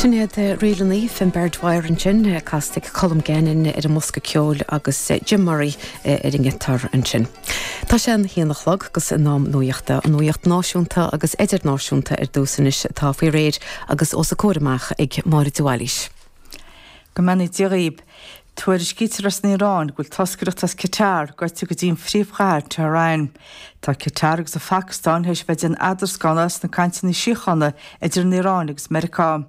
Sin iad ríleanna Finbarr Dwyer ansin, casta ag Colm Gannon ar an mbosca ceoil agus Jim Murray ar an ngiotár ansin. Tá sé an haon a chlog gus in am nuaíochta, an nuaíocht náisiúnta agus idirnáisiúnta ar dtús anois atá faoi réir agus os a comhair amach ag Máire de Bhailís. Go mbeannaí Dia dhaoib. Tuairiscítear as an Iaráin go bhfuil toscaireacht as Catar gaibhte go dtí an phríomhchathair, Tehran. Tá Catar agus an Phacastáin tar éis bheith ag déanamh eadarscána sna cainteanna síochána idir an Iaráin agus Meiriceá.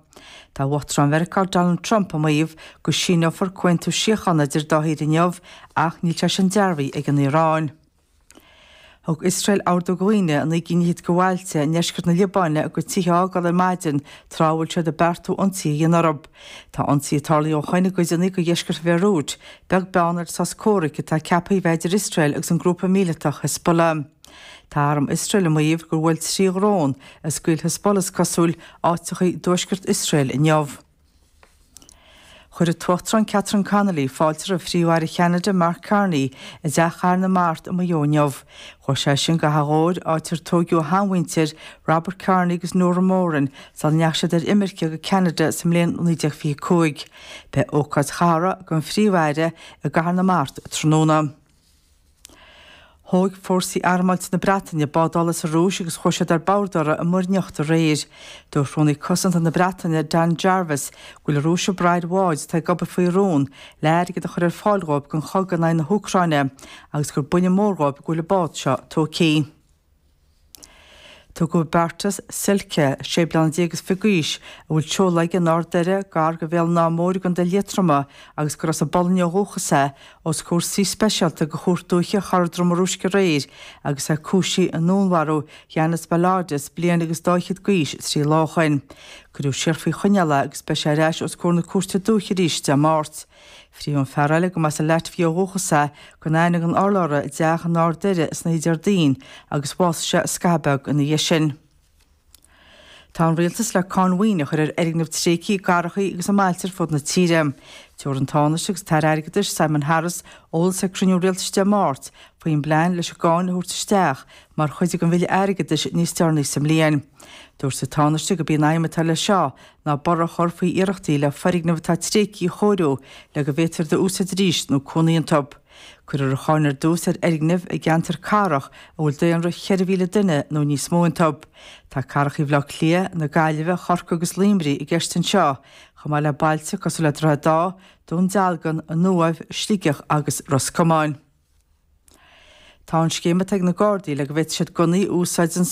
Tá Uachtarán Mheiriceá Donald Trump ag maíomh go síneofar comhaontú síochána idir an dá thír inniu ach níl sé sin dearbhaithe ag an Iaráin. Thug Iosrael ordú do dhaoine i naoi gcinn fhichead go bhailte i ndeisceart na Liobáine a gcuid tithe a fhágáil ar maidin tráth a bhfuil siad ag beartú ionsaithe a dhéanamh orthu. Tá ionsaithe tarlaithe ó shoin i gcodanna go dheisceart Bhéiriúit, beag beann ar an sos comhraic atá ceaptha a bheith i bhfeidhm idir Iosrael agus an grúpa míleatach Hezbollah. Tá arm Iosrael ag maíomh gur bhuail trí dhrón a scaoil Hezbollah is cosúil áiteacha i dtuaisceart Iosrael inniu. Chuir an tUachtarán Catherine Connolly fáilte roimh Phríomh-Aire Cheanada Mark Carney i dTeach Chathair na Mart i Maigh Eo inniu. Chuaigh seisean go hAchadh Ghobhair áit ar tóigeadh a sheanmhuintir, Robert Carney agus Nora Moran, sula ndeachaigh siad ar imirce go Ceanada sa mbliain 1925. Beidh ócáid chathartha don Phríomh-Aire i gCathair na Mart tráthnóna. Thóig fórsaí armáilte na Breataine bád ola as an Rúis agus chuaigh siad ar bord uirthi i Muir nIocht aréir. Dúirt Rúnaí Cosanta na Breataine, Dan Jarvis, go bhfuil an Rúis ag braith ar bháid atá ag obair faoi rún le airgead a chur ar fáil dhóibh don chogadh in aghaidh na hÚcráine agus gur buille mór dhóibh go bhfuil an bád seo tógtha. Tugadh Bartosz Silce, sé bliana déag is fiche d'aois, a bhfuil seoladh aige in Ard Doire, gar go Bhéal an Átha Móir i gContae Liatroma agus gur as an bPolainn ó dhúchas é, os comhair suí speisialta go Chúirt Dúiche Chora Droma Rúisc aréir agus é cúisithe i ndúnmharú Janis Balodis, bliain agus dá fhichead d'aois, trí lá ó shin. Cuireadh siar faoi choinneáil é agus beidh sé ar ais os comhair na Cúirte Dúiche arís Dé Máirt. Frítheadh an fear eile, go mba as an Laitvia ó dhúchas é, gan aithne gan urlabhra i dteach in Ard Doire san oíche Déardaoin agus bhásaigh sé scaitheamh beag ina dhiaidh sin. Tá an Rialtas le cáin mhaoine a chur ar fhoirgnimh tréigthe i gcathrachaí agus i mbailte ar fud na tíre. Tabharfaidh an Tánaiste agus an tAire Airgeadais, Simon Harris, eolas ag cruinniú rialtais Dé Máirt faoin bplean leis an gcáin a thabhairt isteach mar chuid den bhille airgeadais níos deireanaí sa mbliain. Dúirt an Tánaiste go b'í an aidhm atá leis seo Ná borradh a chur faoi iarrachtaí le foirgnimh atá tréigthe a chóiriú le go bhféadfar iad a úsáid arís nó cónaí iontu. Cuirfear an cháin ar dtús ar fhoirgnimh i gceantair chathrach a bhfuil daonra 4,000 duine nó níos mó iontu. Tá cathracha Bhaile Átha Cliath, na Gaillimhe, Chorcaí agus Luimnigh i gceist anseo, chomh maith le bailte cosúil le Droichead Átha, Dún Dealgan, An Uaimh, Sligeach agus Ros Comáin. Tá an scéim atá ag na Gardaí le go bhféadfaidh siad gunnaí a úsáid don